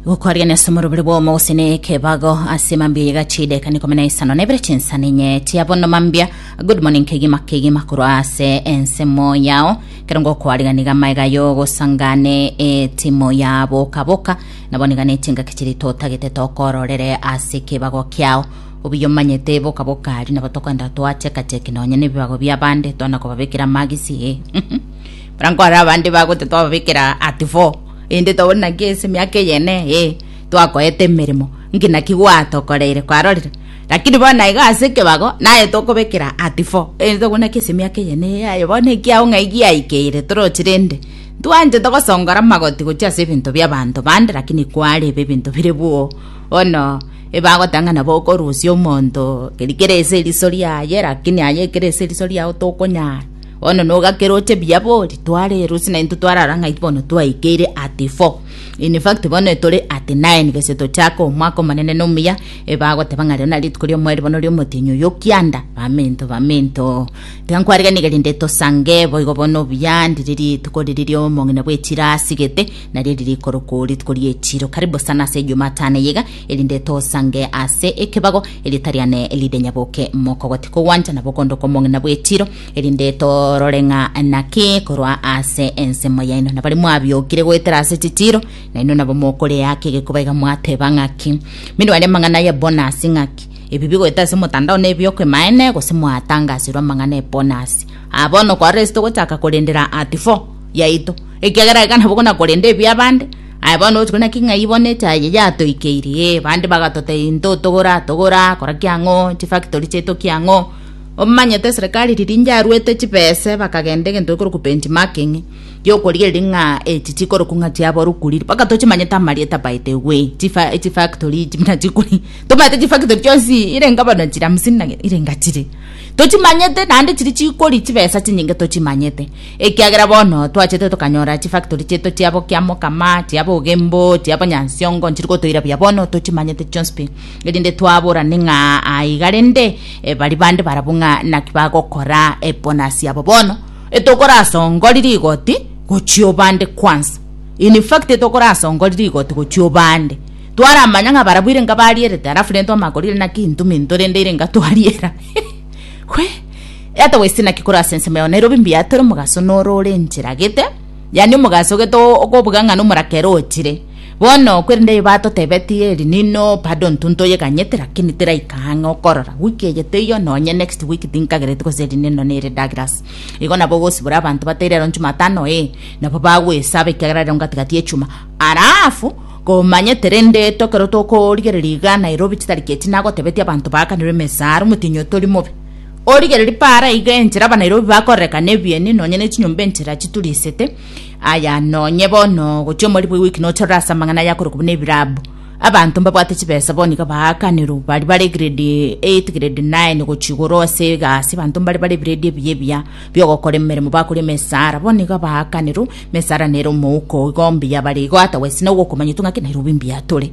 gokwarigania ase omorobere bwa omo gose ne ekebago ase mambia yega chideka nikome na isano nebere chinsana enye tia bono mambia good morning kegima kegima korwa ase ensemo yao kero ngokwarigani gama iga yogosangane etimo ya boka boka nabo niga ne chingaki chiri totagete tokororere ase ekebago kiao obuya omanyete boka boka aria nabo tokoenda twacheka cheki nonye nebibago bia bande twana kobabekera magisi eh Barankore abande bagote twababekera at fo, erinde tobone naki ase emiaka eyene eye twakoete emeremo, nki naki gwatokoreire kwarorire. Lakini bono naiga ase ekebago naye tokobekera at fo, erinde tobone naki ase emiaka eyene eye yaye bono ekiaggo ng'ai giaikeire toroche rende. Ntwanchete gosongora magoti gochia ase ebinto bi'abanto bande, lakini kwarebe ebinto bire bwoo. Bono ebagoteba ng'a nabo okorusia omonto, keri kere ase eriso riaye, lakini aye ekere ase eriso riao tokonyara. Bono nogakeroche buya bo ritware erosi na intwe twarara ng'ai bono twaikeire at four in fact bono etore at nine gese tochake omwaka omonene na omuya ebagoteba ng'a rero nari rituko ri'omoeri bono ri'omotienyi oyo okianda baminto baminto tiga nkwariganie gari nde tosange boigo bono buya ndiri rituko riri ri'omong'ina bw'echiro asigete nario riri korokwo rituko ri'echiro karibu sana ase ejumatano eye iga erinde tosange ase ekebago eritari ane erinde nyaboke mokogote kogwancha nabo okondoka omong'ina bw'echiro erinde torore ng'a naki korwa ase ensemo yaino nabare mwabiokire goetera ase chitiro naino nabo mokorea ake gekoba iga mwateba ng'aki mende wari amang'ana ya bonasi ng'aki ebi bigoeta ase motandao na ebiokwemaene gose mwatangasirwe amang'ana ya bonasi abono kwarire ase togochaka korendera at 4 yaito ekiagera iga nabo gona korenda ebia abande aya bono ogochikwa naki ng'ai bono echa eye yatoikeirie bande bagatotebia intotogora togora kora kiang'o chifactory chiaito kiang'o Omomanyete eserekari riria inche aruete chibese bakagenda egento gekorokwa benchmarking giokorigereria ng'a echi chikorokwa ng'a chiaborokwa riria mpaka tochimanyete amarieta by the way chifa chifactory echi buna chikori tomanyete chifactory chionsi ire ngabana chire hamsini na ire ngachire tochimanyete naende chiri chikori chibesa chinyinge tochimanyete ekiagera bono twachete tokanyora chifactory chiaito chiabo kiamokama chiabo ogembo chiabo nyansiongo nchiri gotoira buya bono tochimanyete chionsi pi. erinde twaborane ng'a aiga rende eh, bari bande barabwo ng'a naki bagokora ebonasi abo bono etokorasongori rigoti gochia obande kwansa in fact etokorasongori rigoti gochia obande twaramanya ng'a barabwo ire nga barierete alafu rende twamakorire naki intu minto rende ire nga twariera hwe ata wese naki kora ase ensemo yao nairobi mbiatore omogaso noro ore enchera gete yani omogaso gete o- okobuga ng'a nomorakero ochire Bono korende aye batotebetie eri nino pardon tu ntoyeganyete lakini teraika ang'e okorora wiki eye teiyo nonye next wiki tinkagereti gose eri nino nere Douglas igo nabo ogosibora abanto batae rero njumatano ee nabo bagwesaba ekiagera rero ngatigati echuma alafu komanyete rende to ekero tokorigereria iga Nairobi chitariki echi nagotebetia abanto baakanirwe emesaara omotinyi oyo tori mobe origereria paara iga enchera abanairobi bakorerekana ebieni nonye ne chinyomba enchera chiturisete Aya nonye bono gochia omori bwa ewiki nochorora ase amang'ana ayakorokwa buna ebirabu abanto mbabwate chibesa bono iga baakanirwe bari bare grade 8 grade 9 gochia igoro ase egasi abanto mbare bare ebiredi ebiya ebiya biogokora emeremo bakore emesara bono iga baakanirwe emesara nere omouko igo mbuya bare igo otherwise nabo okomanyetwe ng'aki nairobi mbuya tore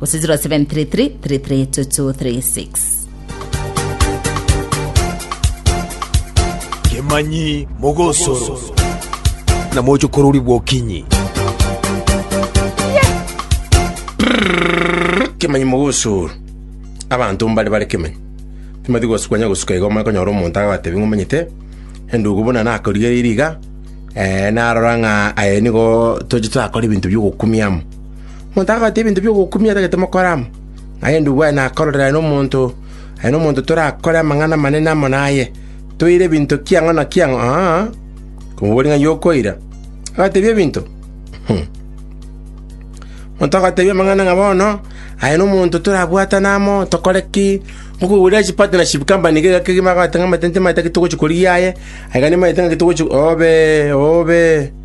Gose 0733 332236. Kemanyi mogosoro na mochokorori bw'okinyi. kemanyi mogosoro abanto mbare bare kemanyi timati gosukwanya gosuka igo omanye konyora omonto agatebi ng'a omanyete endugu buna nakorigereiri iga eh, narora ng'a aye nigo toche twakora ebinto biogokumia amo Motagwata ebinto bi'ogokumia etagete mokore amo, naende uwe nakororere aye nomonto, aye nomonto torakore amang'ana amanene amo naye, toire ebinto kiang'o na kiang'o, aa, komobori ng'a yokoira, agatebia ebinto. Motagatebia amang'ana ng'a bono, aye nomonto torabwatane amo, tokore ki, ngokogurera chipati na chikampani iga egeke kegima, agoteba ng'a amatenti maye tagetogochia korigia aye, aye gani maye tagetogochia obe, obe.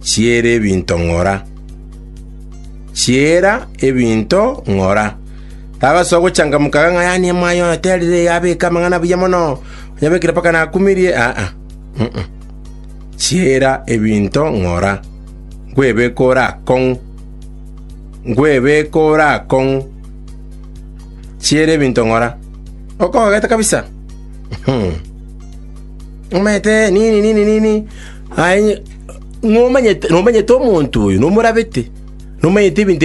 chiere ebinto ng'ora. Chiera ebinto ng'ora. Tagasoa gochangamuka kang'ayanie mwaye oyo terire iga abeke amang'ana buya mono, onyabekire mpaka nakumirie, aa, mm. Chiera ebinto ng'ora. Nkwebeka ore akong'u. Nkwebeka ore akong'u. Chiera ebinto ng'ora. Okogete kabisa. Hmm. Omanyete nini nini nini. Aye nomanyete omonto oyo nomorabete, nomanyete ebinto